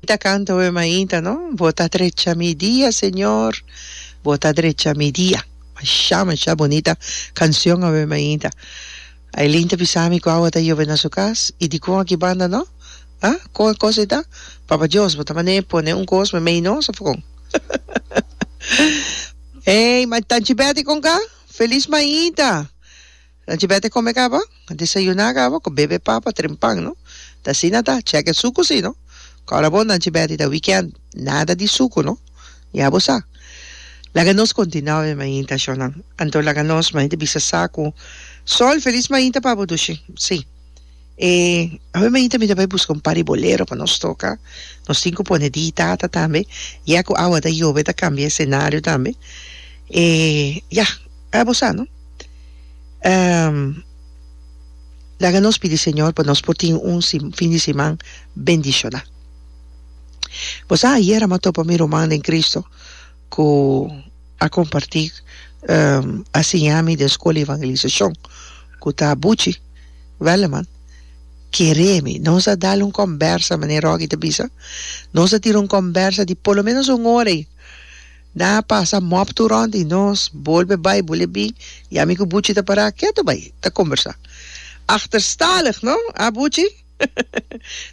Ta canta oe mainta no. Bo ta drecha mi dia Señor bo ta drecha mi dia masha masha bonita cancion oe mainta Ailin ta bisami cu awa ta yove na su cas y dicon aki banda no ah con e cos ei ta Papa Dios bo ta mane pone un cos memey nos of con ey ma tanchi Betty con ca feliz mainta. Nan chibet e come caba, a desayuna caba cu bebe papa tren pan no ta asina ta, cheque sucu si no cora bo nan chibet y ta weekend nada di sucu no ya bo sa laga nos continua be mainta sho nan anto laga nos mainta bisa sa cu sol feliz mainta pa bo dushi si. E awe mainta mi ta bai buska un par di bolero pa nos toka. Nos tin ku pone di tata tambe. Ya ku awa ta yobe ta kambia e senario tambe. E ya, a bo sa no. Um, laga nos pidi Señor pa nos por tin un si-, fin di siman bendishoná. Bo sa ayera mi a topa mi ruman den Cristo, ku a kompartí a siña mi den Skol di Evangelisashon ku ta Buchi Welleman kere mi nos a dal un kòmbersa manera Rogge ta bisa nos a tira un kòmbersa di por lo menos un ora i nan a pasa mòp tur rònt i nos bolbe bai bolbe bin ya mi ku Buchi ta para ketu bai ta kombersá achterstalig no a Buchi.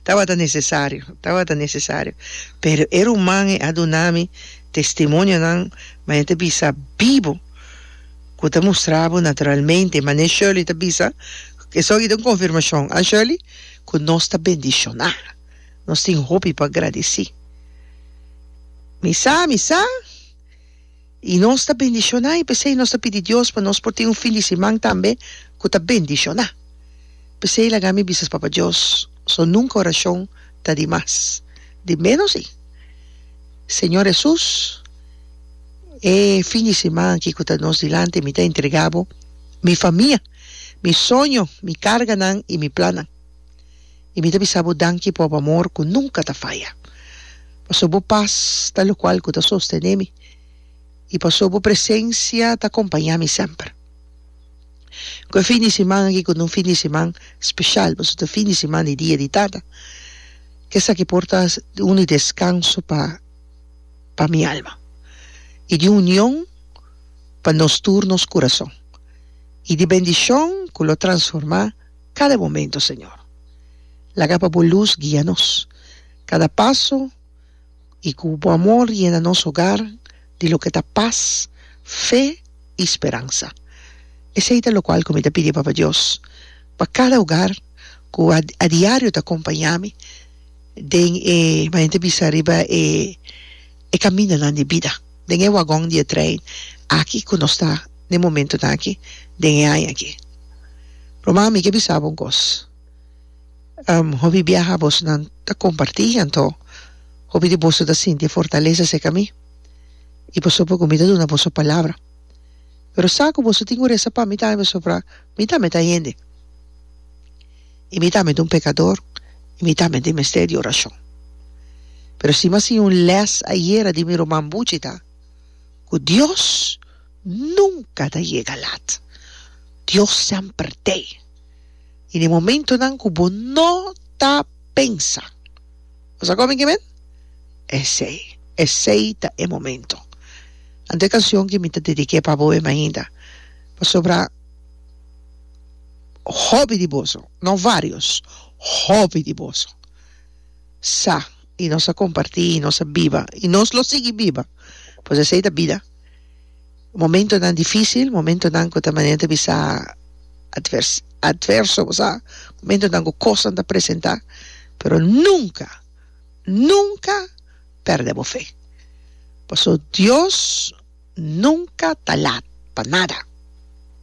Tabata necesario, tabata necesario. Pero e ruman e a duna mi testimonionan maya ta bisa bibo cu ta mustra bo naturalmente, mane Shirley ta bisa, esoki ta un confirmacion, ah Shirley? cu nos ta bendiciona, nos tin hopi pa gradici. Mi sa, mi sa. I nos ta bendishoná, i p'esei nos ta pidi Dios pa nos por tin un fin di siman tambe ku ta bendishoná. P'esei laga mi bisas Papa Dios, so nunka orashon ta di mas. Di ménos i, Señor Hesus, e fin di siman aki ku ta nos dilanti mi ta entregá Bo mi famia, mi soño, mi karganan i mi plannan. I mi ta bisa bo danki por bo amor ku nunka ta faya, pasobra bo pas ta lokual ku ta sostené mi, i pasobra bo presensia ta kompañá mi semper. Ku e fin di siman aki ku ta un fin di siman speshal, pasobra ta fin di siman di Dia di Tata, ke esaki por ta un di deskanso pa pa mi alma, i di union pa nos tur nos kurason, i di bendishon ku lo transformá. kada momento, Señor. Laga pa Bo lus guia nos kada paso i ku Bo amor yena nos hogar di loke ta pas, fe i speransa. Esei ta lokual ku mi ta pidi, Papa Dios, pa kada hogar ku a diario ta akompañá mi den e, manera mi ta bisa riba e. e caminanan di bida den e wagon di e trein aki cu nos ta na e momentonan aki den e aña aki. Roma, mi ke bisa bo un cos. Hopi biaha bosonan ta comparti anto hopi di boso ta sinti e fortaleza seca mi y pasobra boso cu mi ta duna boso palabra. Pero sa cu boso tin un resa pa mi tambe pasobra mi tambe ta hende. i mi tambe ta un pekador i mi tambe tin mester di orashon. Pero si mi a siña un lès ayera di mi ruman buchi ta ku Dios nunka ta yega lat. Dios semper tei. I den momentunan ku bo no ta pensa. Bo sa kon mi ke men? Esei. Esei ta e momento. Anto e kanshon ke mi ta dediké pa bo e mainta. Pasobra. hopi di boso, no varios, hopi di boso sa y nos a comparti y nos a biba y nos lo sigui biba pues esey ta bida momentonan dificil, momentonan cu ta manera ta bisa advers adverso bo sa, momentonan cu cosnan ta presenta pero nunca, nunca perde bo fe pasobra Dios nunca ta laat pa nada.